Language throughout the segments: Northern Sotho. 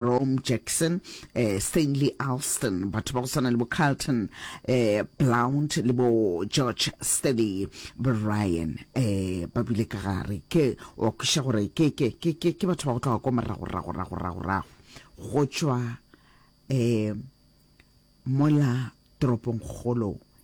Rome Jackson, eh, Stanley Alston, batho ba go tshwana le bo Carlton eh, Blount le bo George Steady Bryan eh, ba bile ka gare ke wa kwiša gore ke ke ke ke ke batho ba go tloga ko morago rago rago rago rago go tšwa eh, mola toropong kgolo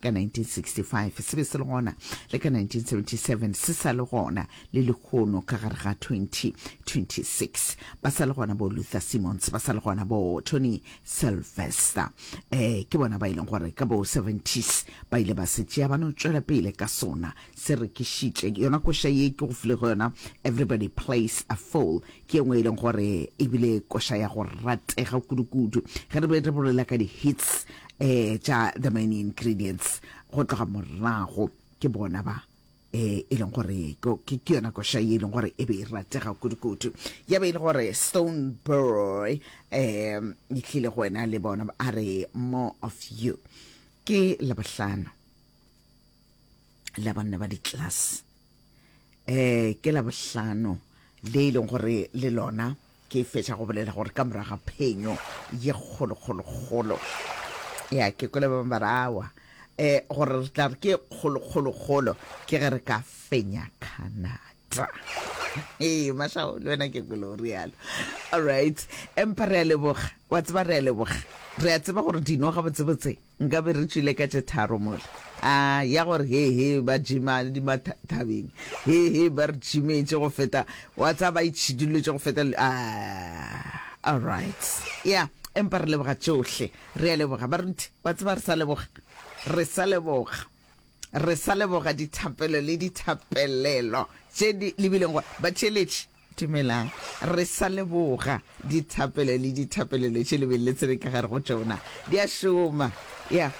ka 1965 se be se le gona, le ka 1977 se sa le gona, le lehono ka gare ga 2026 ba sa le gona bo Luther Simmons, ba sa le gona bo Tony Sylvester. Eh, ke bona ba e leng gore ka bo 70s ba ile ba se tšea ba no tšwela pele ka sona, se rekišitše yona koša ye ke go file go yona Everybody Plays a Fool, ke ye nngwe e leng gore e bile koša ya go ratega kudu-kudu ge re be re bolela ka di-hits eh tša the main ingredients go tloga morago ke bona ba eh e leng gore ke yona kosha e leng gore e be e ratega kudu-kudu ya be e le gore stone boy um e tlile go wena le bona a re more of you ke labohlano la banna ba di-class um ke labohlano le e leng gore le lona Ke fetša go bolela gore ka morago ga phenyo ye kgolokgolokgolo ya ke kwele ba bangwe ba re awa um gore re tla re ke kgolokgolokgolo ke ge re ka fenya canada ee mashao le wena ke kwele o realo allright empa re a leboga wa tseba re a leboga re a tseba gore dino gabotsebotse Nkabe re tšwile ka tše tharo mola. A ya gore he he ba jima di ma thabeng. He he ba re jimetše go feta wa tsa ba itšhiduletše go feta a all right. Ya empa re leboga tšohle. Re a leboga baruti. Wa tseba re sa leboga. Re sa leboga. Re sa leboga dithapelo le dithapelelo tše di lebileng gore ba theeletše. Dumelang. Re sa leboga dithapelo le dithapelelo tše le beng le tsebe ka gare go tšona. Di a šoma. Ya.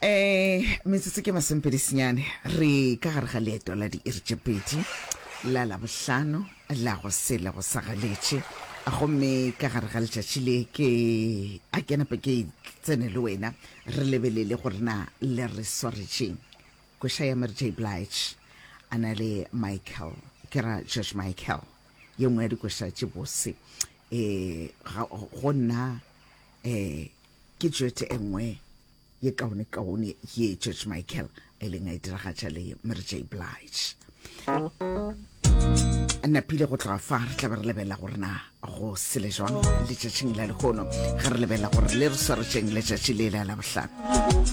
Um, metsotso ke masomepedisinyane. Re ka gare ga leeto la diiri tše pedi, la Labohlano, la go se le go sa galetše. Gomme ka gare ga letšatši le, ke a ke nape ke tsene le wena, re lebelele gore na le re swaretšeng. Koša ya Mary J. Blige a na le Michael, ke ra George Michael, ye nngwe ya dikoša tše bose. E, ga, go nna e, ke tšwete e nngwe ye kaone-kaone ye George Michael a ileng a e diragatša le Mary J. Blige. Napile go tloga fa re tla be re lebelela gore na go sele jwang letšatšing la lehono ge re lebelela gore le re swaretšeng letšatši le la labohlano